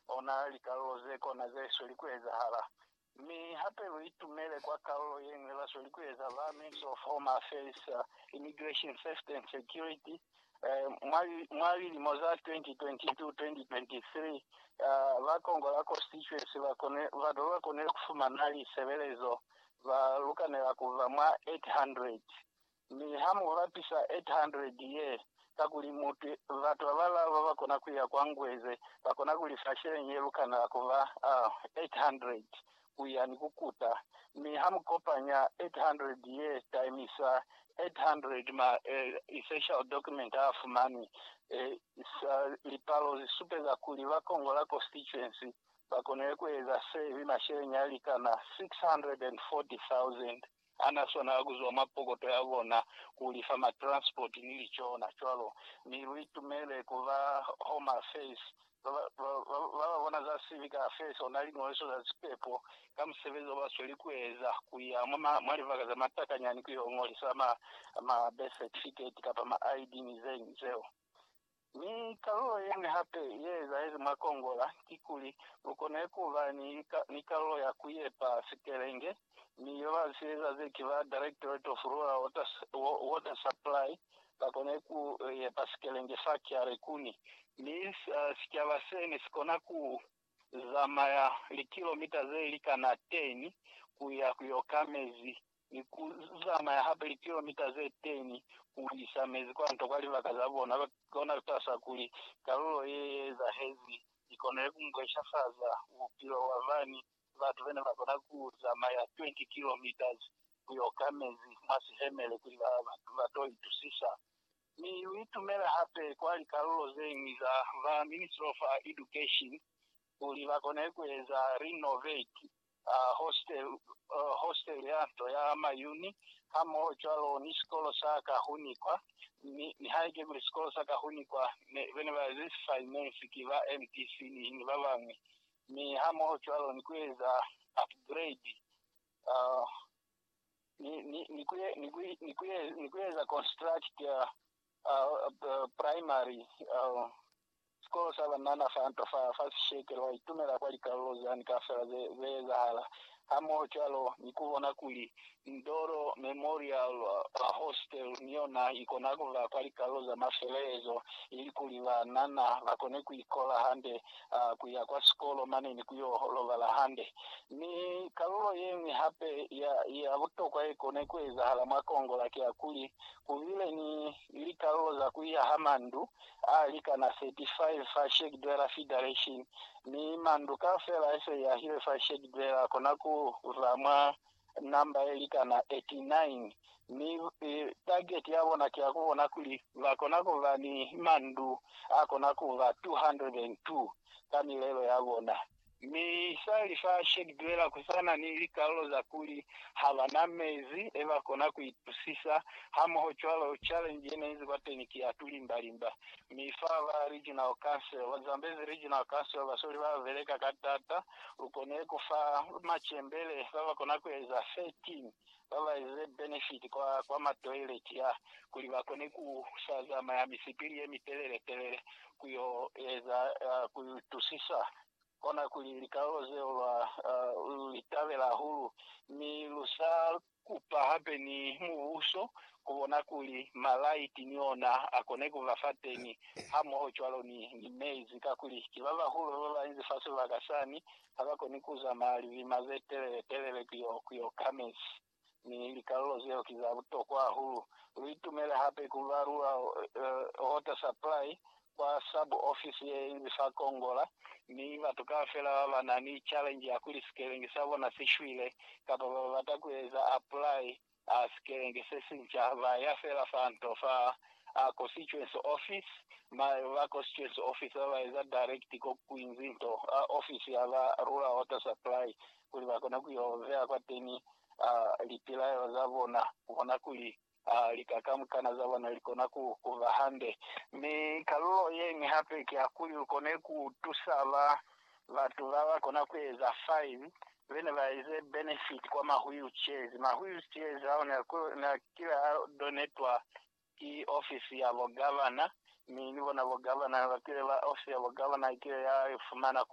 ona likalolo ze kona ze sweli ku ezahala. Mi hape lu itumele kwa kalulo ye ñwi ba sweli ku eza ba Mins of Home Affairs, Immigration, Safety and Security mwa mwa lilimo za 2022-2023. Ba Kongola Constituency ba kone ba ba konile ku fumana lisebelezo ba lukanela ku ba mwa 800 Mi ha mu bapisa 800 ye, kakuli mutu, batu babalaa baba kona kuya kwa Ngweze, ba kona ku lifa sheleñi ye lukana ku ba, uh, 800 kuya ni ku kuta. Mi ha mu kopanya 800 ye times 800 ma essential document a fumanwi, uh, lipalo zi supeza kuli ba Kongola constituency ba konile ku eza se mi masheleñi a likana 640,000. Ha na swanela ku zwa mwa pokoto ya bona ku lifa ma transport ni licona. Cwalo mi lu itumele ku ba Home Affairs ba ba bona za Civic Affairs ona Liñoliso za Sipepo ka musebezi o ba sweli ku eza, ku ya mwa libaka za matakanyani ku yo ñolisa ma birth certificate kapa ma ID ni ze ñwi zeo. Mi kalulo yeñwi hape ye ezahezi mwa Kongola kikuli, lu kone ku ba ni kalulo ya ku yepa sitelenge, mi yo ba si eza ze ki ba Directorate of Rural Water Supply ba kone ku yepa sitelenge sa Kiarekuni, mi sicaba se ne si kona ku zamaya likilomita ze li kana 10 ku ya ku yo ka mezi ni ku zamaya hape likilomita ze 10 ku isa mezi kwa nto kwa libaka za bona, kona ku tahisa kuli kalulo ye ye ezahezi i konile ku mbweshafaza bupilo bwa bani batu be ne ba kona ku zamaya 20 kilometres ku yo ka mezi mwa sihemele kuli ba to itusisa Mi u itumele hape kwa likalulo zeñwi za ba Ministry of Education kuli bakone kueza renovate hostel ya nto ya mayuni hamoho cwalo ni sikolo sa Kahunikwa, mi nihaike kuli sikolo sa Kahunikwa bene ba ze si finance ki ba MDC ni babañwi, mi hamoho cwalo ni kueza upgrade ni ku eza construct primary sikolo sa banana fa nto fa Sesheke, lwa itumela kwa likalolo zani kaufela ze ezahala, hamoho cwalo ni ku bona kuli Ndoro Memorial Hostel ni yona i kona ku ba kwa likalolo za mafelelezo ilikuli banana ba kone ku ikola hande a ku ya kwa sikolo mane ni ku yo lobala hande. Mi kalulo ye ñwi hape ya, ya butokwa ye kone ku ezahala mwa Kongola ki ya kuli, ku bile ni likalulo za ku yaha mandu a likana 35 fa Shegdwela Fidaration, mi mandu kaufela a se yahilwe fa Shegdwela kona ku ba mwa namba ye likana 89, mi tageti ya bona ki ya ku bona kuli ba kona ku ba ni mandu a kona ku ba 202 ka milelo ya bona. Mi sa li fa Shade Dweller ku sa na ni likalulo za kuli ha ba na mezi e ba kona ku itusisa hamoho cwalo, challenge ye ne inzi kwateni ki ya tulimbalimba. Mi fa ba Regional Council, ba Zambezi Regional Council, basoli ba beleka ka tata lu kone ku fa macembele ba ba kona ku eza 13 ba ba eze benefiti kwa, kwa matoileti a, kuli ba kone ku sa zamaya misipili ye mitelele-telele ku yo eza, uh, ku itusisa. Kona kuli likalolo zeo lwa, uh, lu li tabela hahulu, mi lu sa Kupa hape ni Mubuso, kubona kuli malaiti ni ona akone kuba fateni, hamoho cwalo ni, ni mezi, kakuli ki babahulu babañi fa sibaka sani, habakoni kuzamaya lilima zetelele telele kuyo, kuyo ka mezi. Mi likalulo zeo ki za butokwa hahulu. Lu itumele hape kuba lua, uh, water supply, kwa sub office ye li fa Kongola, mi batu kaufela ba ba na ni challenge ya kuli sikelengi sa bona si shwile kapa ba bata ku eza apply a sikelengi se sinca ba ya fela fa nto fa a constituency office, ma ba constituency office ba ba eza direct ko Kwinzi nto a office ya ba Rural Water Supply kuli ba kone ku yo beya kwateni a lipilaelo za bona ku bona kuli Ha lika kamukana za bona likona ku ba hande, mi kalulo yeñwi hape ki ya kuli lukone ku tusa ba batu ba ba kona ku eza fine bene ba eze benefit kwa ma wheelchairs. Ma wheelchairs ao ne a kile a donetwa ki ofisi ya bo gavana, mi ni bona bo gavana ne ba kile ba, ofisi ya bo gavana i kile ya fumana ku